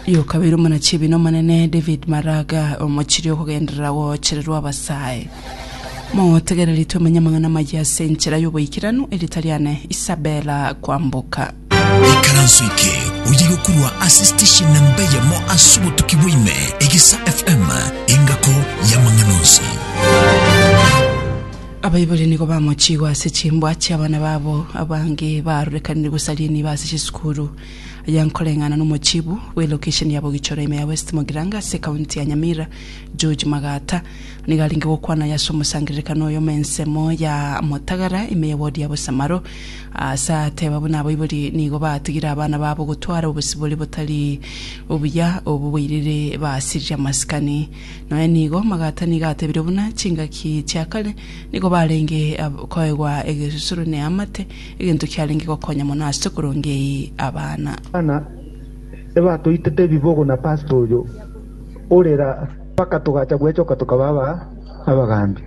Y'okabere omonachibi nomonene David Maraga, omochiri okogenderera goochererwa abasae. Motegereri tomenye amang'ana amaya ase enchera y'oboikeranu, erita riane Isabella Kwamboka. ikaranso eke oye gokurwa ase station namba eyemo ase obotuki bwaime egesa fm engako yamang'ana onsi Abaibori nigo bamochiigwe ase chimbwa chi'abana babo abange baarorekanire gosaria enibo ase chisukuru. Aya nkoreng'ana n'omochibu bwe lokesheni ya Bogichoro ime ya West Mogiranga ase ekaunti ya Nyamira, George Magata, nigo arenge gokwana aya ase omosangererekano oyomo ensemo ya Motagara ime ye ward ya Bosamaro, ase aateba buna abaibori nigo baatigire abana babo gotwara obosibore botari obuya obo boirire basirire amasikani. Nonya nigo Magata nigo atebire buna chingaki chia kare nigo barenge koegwa egesusuro ne amate, Egento kiarenge gokonya mono ase korongeyi abana. Abana ebatoitete ebibogo na pastor oyo orera mpaka togacha gwechoka tokaba aba abagambi.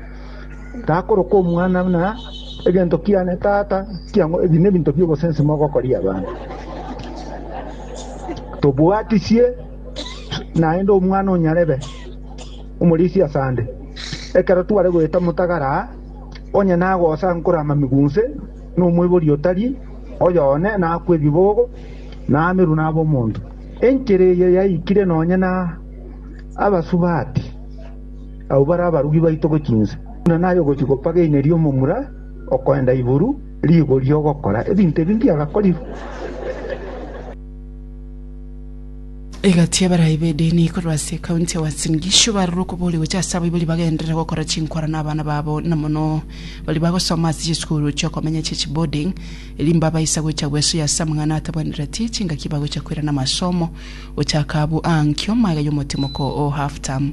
Takoroka omwana buna egento kiane tata kiang'o ebi nebinto biobosensi mogokoria abana. Tobuatisie naende omwana onyarebe omorisia asande ekero tware goeta motagara. Onye nagosa nkore amamigo onse nomoibori otari oyo one, nakwe ebibogo, namerwe nab'omonto. Enchera eye yaikire nonya na abasubati, abwo bare abarugi baito gochia inse, buna naye ogochia gopaga eina ri'omomura okoenda igoro rigori ogokora ebinto ebi mbiagakorire. Egati y'abarai b'edini korwa ase ekaunti ya Uasin Gishu barire okobori gocha ase abaibori bagenderere gokora chinkwana na abana babo na mono baria bagosoma ase chisukuru chi'okomenya chie chiboarding erio mbabaisa gocha gwesoyia ase amang'ana atabwenereti chingaki bagocha koirana amasomo gochaka abwo aa nkio maega y'omotimoko o half term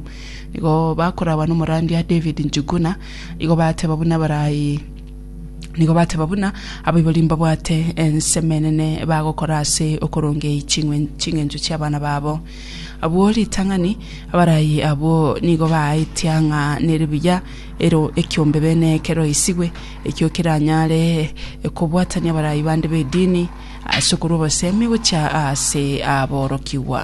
nigo bakorabana omorandi aa David Njuguna igo bateba buna abarai Nigo bateba buna abaibori mbabwate ensemo enene bagokora ase okorongei ching'wen- ching'encho chi'abana babo. Abwo ritang'ani abaraai abwo nigo baaetia ng'a nere buya ero ekiombe bene keroisigwe, ekio keranyare kobwatania abaraai bande b'edini ase okorwa obosemi gochia aase aborokigwa.